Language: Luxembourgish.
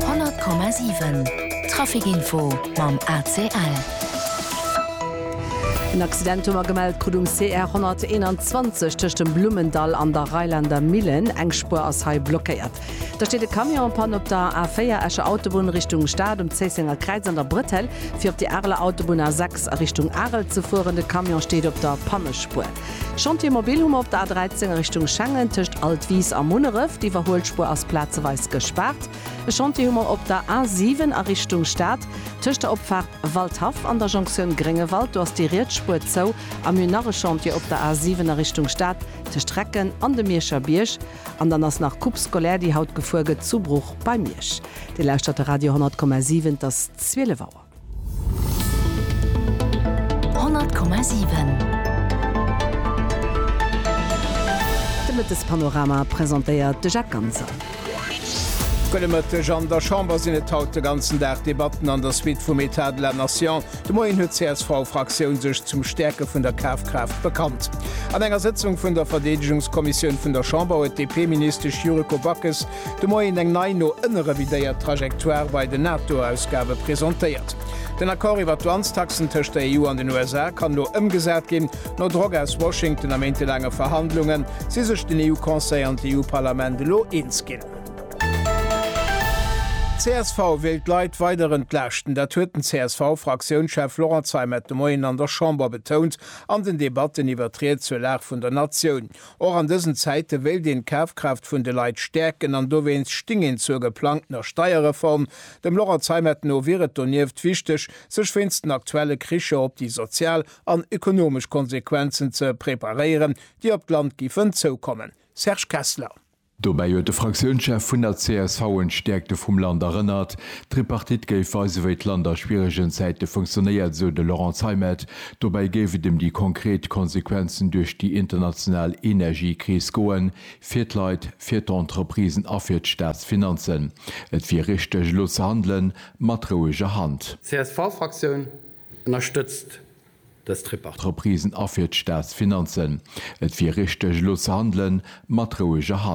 100,7 Traficinfo mam ACL. En Accident hu mer gemellt, krut um CR 121 tëscht dem Blummendall an der Reilander Millen. Eng Spuer ass hei blockéiert. Da steet e Camion en panne op der A4, Escher Autobunn Richtung Stad, um Zéissenger Kräiz an der Bretelle, fir op déi Areler Autobunn A6 a Richtung Arel ze fueren. De Camion steet op der Pannespuer. Chantier Mobil hu mer op der A13 a Richtung Schengen tëscht Altwis a Munneref. D'Iwwerhuelspuer ass plazeweis gespaart. E Chantier hu mer op der A7 a Richtung Stad tëscht der Opfaart Waldhaff an der Jonktioun Gréngewald. Do ass déi riets Spuer zou. A mir hunn nach e Chantier op der A7 a Richtung Stad tëscht Recken an dem Mierscher Bierg. An dann ass nach Coupe scolaire, déi haut gefuer gëtt zu Bruch bei Miersch. Dir lauschtert de Radio 100,7, et ass 12 Auer. De Mëttespanorama presentéiert de Jacques Ganser. Gudde Mëtteg. An der Chamber sinn et haut de ganzen Dag Debatten an der Suite vum Etat de la Nation. De Moien huet d'CSV-Fraktioun sech zum Stäerke vun der Kafkraaft bekannt. An enger Sëtzung vun der Verdeedegungskommissioun vun der Chamber huet d'DP-Ministesch Yuriko Backes De Moien eng nei, no ënne revidéiert Trajectoire bei den NATO-Ausgabe presentéiert. Den Accord iwwer d'Douanestaxen tëscht der EU an den USA kann elo ëmgesat ginn. No Drock aus Washington a méintelaange Verhandlunge si sech den EU-Conseil an d'EU-Parlament elo eens ginn. Csv wéilt d'Leit weider entlaaschten. Dat huet den CSV-Fraktiounschef Laurent Zeimet de Moien an der Chamber betount an den Debatten iwwer d'Ried zur Lag vun der Natioun. Och an dësen Zäite wéilt een d'Kafkraaft vun de Leit stäerken an dowéinst sting een zur geplangtener Steierreform. Dem Laurent Zeimet no wier et donieft wichteg, sech wéinst den aktuelle Kricher op déi sozial an ekonomesch Konsequenzen ze preparéieren, déi op d'Land giffen zoukommen. Serge Kessler. Dobäi huet de Fraktiounschef vun der csv un d'Stäerkte vum Land erënnert. D'Tripartite géif weisen, wéi d'Land a schwieregen Zäite funktionéiert, esou de Laurent Zeimet. Dobäi géif et ëm déi konkret Konsequenzen duerch déi international Energiekris goen, fir d'Leit, fir d'Entreprisen a fir d'Staatsfinanzen. Et wier richteg, elo ze handelen, mat roueger Hand. D'CSV-Fraktioun ënnerstëtzt dës Tripartite. Entreprisen a fir d'Staatsfinanzen. Et wier richteg, elo ze handelen, mat roueger Hand.